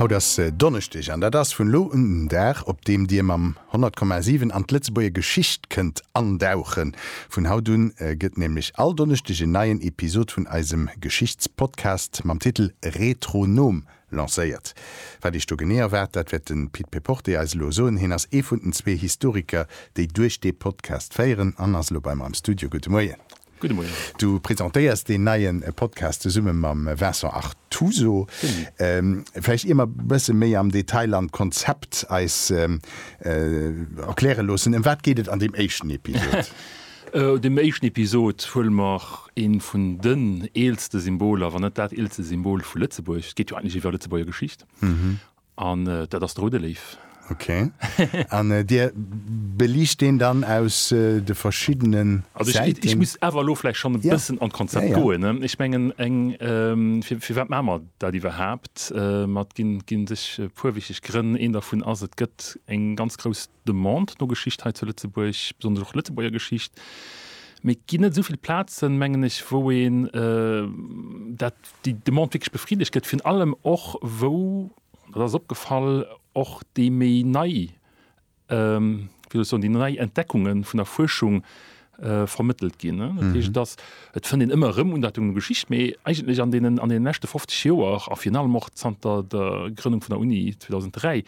Haut ass Donneschdeg an dat ass vun elo un den Dag, op deem Dir mam 100,7 an d'Lëtzebuerger Geschicht kënnt andauchen. Vun haut un gëtt nämlech all Donneschdeg en neien Episod vun eisem Geschichtspodcast mam Titel Retronom lancéiert. Wat Iech do genee erwaart, dat wäert de Pit Péporté eis elo soen. Hien ass ee vun den zwee Historiker, déi duerch dee Podcast féieren an ass elo bei mer am Studio. Gudde Moien. Gudde Moien. Du presentéiers deen neie Podcast zesumme mam Vincent Artuso. Vläicht ier mer e bësse méi am Detail an d'Konzept eis erkläre loossen, ëm wat geet et an deem éischten Episod? An deem éischten Episod huele mer eent vun den eelste Symboler, wann net dat eelste Symbol vu Lëtzebuerg, et geet jo eigentlech iwwer Lëtzebuerger Geschicht, An dat ass de Rudelev. Ok. An Dir beliicht deen dann aus de verschiddene Säiten? Also ech muss awer elo vläicht schonn e bëssen an d'Konzept goen. Ech mengen, firwat maache mer dat iwwerhaapt? Ginn sech e puer wichteg Grënn. Een dervun ass, et gëtt eng ganz grouss Demande no Geschicht hei zu Lëtzebuerg, besonnesch och Lëtzebuerger Geschicht, mee et ginn net esou vill Plazen, mengen ech, wou een dat, déi Demande wierklech befriddegt gëtt, virun allem och wou, dat ass opgefall, och déi méi nei, wéi soll ech soen, déi nei Entdeckunge vun der Fuerschung Äh, vermëttelt ginn. Dat heescht, dass mhm. et fënnt een ëmmer erëm un dat eng Geschicht, mee eigentlech an deenen, an deenen leschte 50 Joer a fir allem och zanter der Grënnung vun der Uni 2003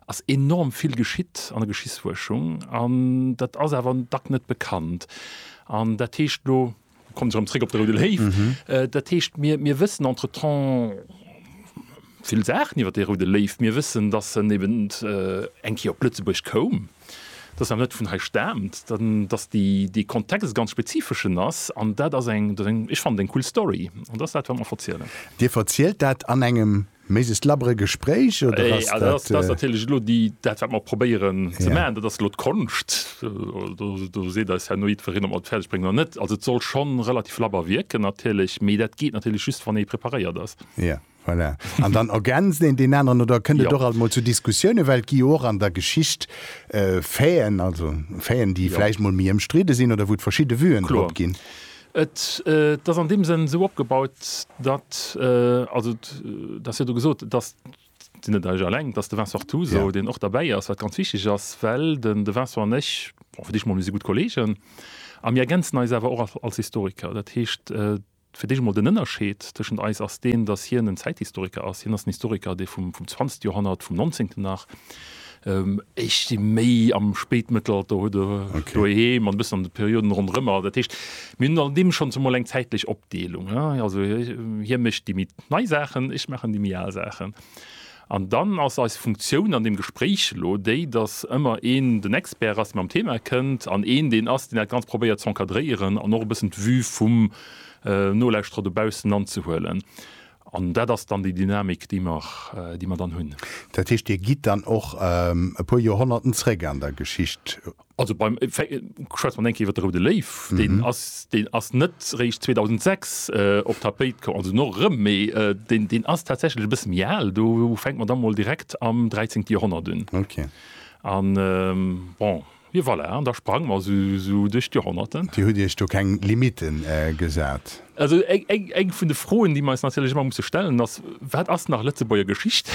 ass enorm vill geschitt an der Geschichtsfuerschung an dat ass awer an Dack net bekannt. An dat heescht lo kommt erëm zréck op der Rue de Léiw. Mhm. Äh, dat heescht mir, mir wëssen entretemps vill Saachen iwwer de Rue de Léiw. Mir wëssen, dass en eben äh, eng Kéier op Lëtzebuerg koum. dass se awer net vun hei staamt, dass dee Kontext e ganz spezifeschen ass. An dat ass eng, ech fannen, eng cool Story. An dat ass dat, wat mer verzielen. Dir verzielt dat an engem, méi sech labere, Gespréich? Oder ass dat. Dat ass natierlech elo dat, wat mer probéieren ze maachen. Dat ass elo d'Konscht. Do seet eis herno jiddwereen, ob mer et fäerdeg bréngen oder net. Also et soll schonn relativ labber wierken natierlech, mee dat geet natierlech just, wann ee preparéiert ass. Voilà. An dann ergänzt een deen aneren oder kënnt et och alt mol zu Diskussiounen, well et gi jo och an der Geschicht Faiten, also Faiten, déi vläicht mol méi ëmstridde sinn oder wou et verschidde Vuen drop ginn. Et ass an deem Sënn esou opgebaut, datt, also et ass jo do gesot, datt, et sinn net ech alleng, datt de Vincent Artuso, deen och derbäi ass, wat ganz wichteg ass, well den de Vincent an ech, bon fir d'éischt emol, mir si gutt Kolleegen a mir ergänzen eis awer och als Historiker. Dat heescht, Fir d'éischt emol den Ënnerscheed tëschent eis ass deen, datt hien en Zäithistoriker ass. Hien ass en Historiker, dee vum zwanzegste Joerhonnert, vum Nonzéngten nach, ech si méi am Spéitmëttelalter, huet e doheem an e bëssen an de Perioden ronderëm. Also dat heescht, mir hunn an deem schonns emol eng zäitlech Opdeelung. Also hie mécht déi méi nei Saachen, ech maachen déi méi al Saachen. An dann ass eis Funktioun an deem Gespréich elo déi, dass ëmmer een den Expert ass, dee mam Thema kënnt, an een deen ass, deen dat Ganzt probéiert z'encadréieren an och e bëssen d'Vue vum Nolauschterer dobaussen anzehuelen. An dat ass dann déi Dynamik, déi mer, déi mer dann hunn. Dat heescht, Dir gitt dann och e puer Joerhonnerten zréck an der Geschicht? Also beim, schwätze mer eng Kéier iwwer de Roude Léiw, deen ass, deen ass net réischt 2006 op d'Tapéit komm, also no erëm, mee deen, deen ass tatsächlech e bësse méi al, do fänke mer da mol direkt am dräizéngte Joerhonnert un. Okay. A bon, jo voilà, an da sprange mer esou duerch d'Joerhonnerten. Dir hutt Iech do keng Limitten gesat? Also eng vun de Froen, déi mer eis natierlech ëmmer musse stellen, ass, Wat ass nach Lëtzebuerger Geschicht?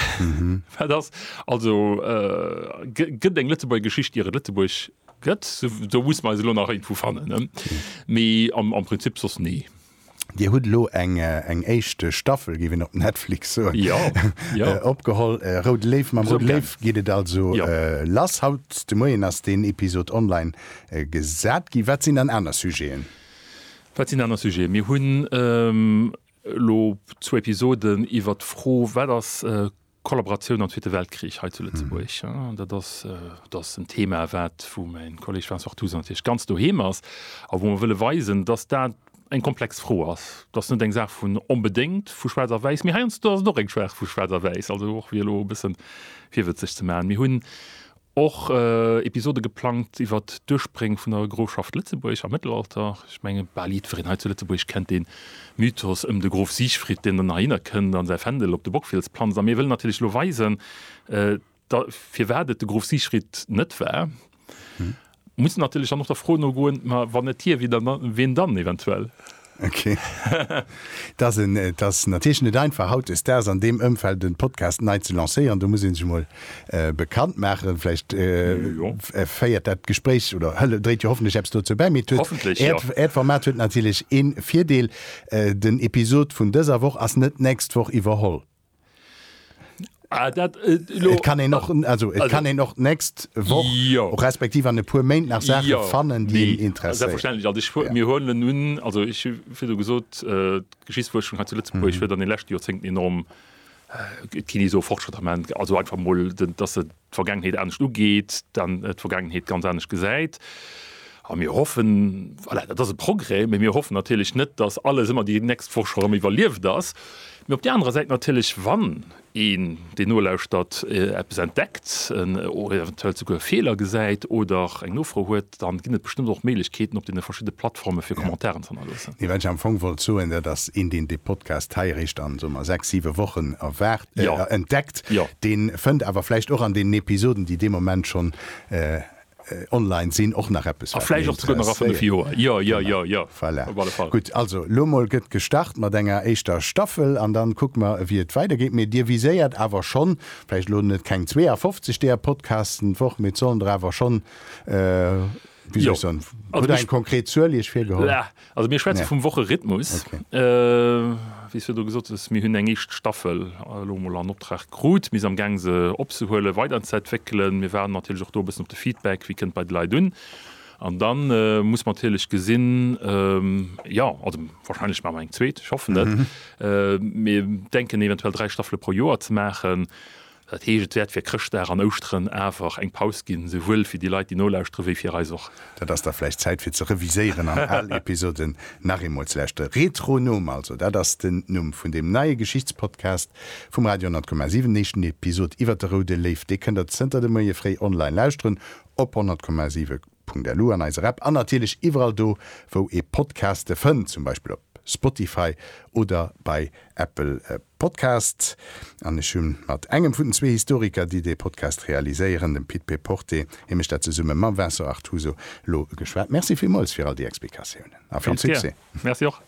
Wat ass also, gëtt eng Lëtzebuerger Geschicht, ier et Lëtzebuerg gëtt? Do musse mer eis elo nach iergendwou fannen, mee am Prinzip soss nee. Dir hutt elo eng éischt Staffel, géif een op Netflix soen, opgeholl, Roude Léiw. Mam Roude Léiw geet et also lass. Haut de Moien ass deen Episod online gesat ginn. Wat sinn dann aner Sujeten? Wat sinn aner Sujeten? Mir hunn elo zwou Episoden iwwert d'Fro, Wat ass Kollaboratioun am Zweete Weltkrich hei zu Lëtzebuerg? Dat ass, dat ass en Thema, wat, wou mäin Kolleeg Vincent Toussaint natierlech ganz doheem ass a wou mer wëlle weisen, datt dat eng komplex Fro ass. Dat ass net eng Saach vun, onbedéngt vu schwaarz a wäiss, mee heiansdo ass et och eng Saach vu schwaarz a wäiss, also och fir elo e bësse virwëtzeg ze maachen. Mir hunn Och Episode geplangt iwwer d'Urspréng vun der Grofschaft Lëtzebuerg am Mëttelalter. Ech menge bal jiddwereen hei zu Lëtzebuerg kennt dee Mythos ëm de Grof Siegfried, deen dann nach hinner kënnt a säi Fändel op de Bockfiels planzt. A mir wëllen natierlech elo weisen, firwat et de Grof Siegfried net war. Muss natierlech dann och der Fro nogoen, ma wann net hie, ween dann eventuell? Ok. Et ass natierlech net einfach hautdesdaags an deem Ëmfeld e Podcast nei ze lancéieren. Do muss ee sech emol bekannt maachen. Vläicht féiert dat Gespréich oder dréit jo hoffentlech eppes dozou bäi. Mee äert Format huet natierlech ee Virdeel, Den Episod vun dëser Woch ass net d'nächst Woch iwwerholl. Ah, dat, äh, lo, kann en noch also, also kann en noch nächst Woch ja. respektiv an e puer Méint nach Sache ja. fannen déi nee. Interesse selbstverständlich also ich, ja. mir huelen nun also ich fir du gesot äh, Geschichtsforschung hat zu Lützeburg mhm. huet an den letzten Joerzéngten enorm äh, Kini so Fortschritt am also einfach mo dass se d'Vergaangenheet anescht ugeet, dann d'Vergaangenheet ganz anescht gesäit. A mir hoffen, voilà, dat ass e Progrès, mee mir hoffen natierlech net, dass alles ëmmer déi nächst Woch scho erëm iwwerlieft ass. Mee op där anerer Säit natierlech, wann een, deen nolauschtert, eppes entdeckt, eventuell souguer Feeler gesäit oder eng Nofro huet, dann ginn et bestëmmt och Méiglechkeeten op deene verschidde Plattforme fir Commentairen ze hannerloossen. Nee, wat ech am Fong wollt soen, dat ass een, deen dee Podcast hei eréischt an, soe mer, sechs, siwe Wochen erwaart, Jo. äh, entdeckt, Jo. deen fënnt awer vläicht och an deenen Episoden, déi dee Moment schonn äh, online sinn, och nach eppes, A wat vläicht hien och souguer nach a fënnef interesséiert. Joer. Jo, jo, jo, jo, Voilà. op alle Fall. Gutt, also lo mol gëtt gestart mat enger éischter Staffel an dann kucke mer, ewéi et weidergeet. Mee Dir viséiert awer schonn, vläicht lo net keng 52 deeër Podcasten d'Woch, mee et sollen der awer schonn, Äh. Jo. Hutt Der eng konkret Zuel Iech virgeholl? Laa. Also mir schwätze vum Woche-Rhythmus. Okay. Äh, wéi s Du do gesot hues, mir hunn eng éischt Staffel elo emol an Optrag krut. Mir si am Gaang se opzehuelen, weiderzëentwéckelen. Mir waarden natierlech och do e bëssen op de Feedback, wéi kënnt bei de Leit un. An dann muss mer natierlech gesinn, jo, also wahrscheinlech maache mer eng zweet, ech hoffen et. Mir denken eventuell dräi Staffele pro Joer ze maachen. Dat heescht, et wäert fir Chrëschtdag an Ouschteren awer eng Paus ginn, esouwuel fir déi Leit, déi nolauschteren, wéi fir eis och. Dat ass da vläicht Zäit fir ze reviséieren an al Episoden nach eemol ze lauschteren. Retronom also, dat ass den Numm vun deem neie Geschichtspodcast vum Radio 10,7. Den éischten Episod iwwert de Roude Léiw, dee kënnt der zënter de Moie fréi online lauschteren op 10,7. Punkt elu an eiser App an natierlech iwwerall do wou ee Podcaste fënnt, zum Beispill op Spotify oder bei Apple Podcasts. An ech hu mat engem vun den zwee Historiker, déi dee Podcast realiséieren, dem Pit Péporté, hie mécht dat zesumme mam Vincent Artuso, elo geschwat. Merci villmools fir all déi Explikatiounen a vill Succès! Merci och.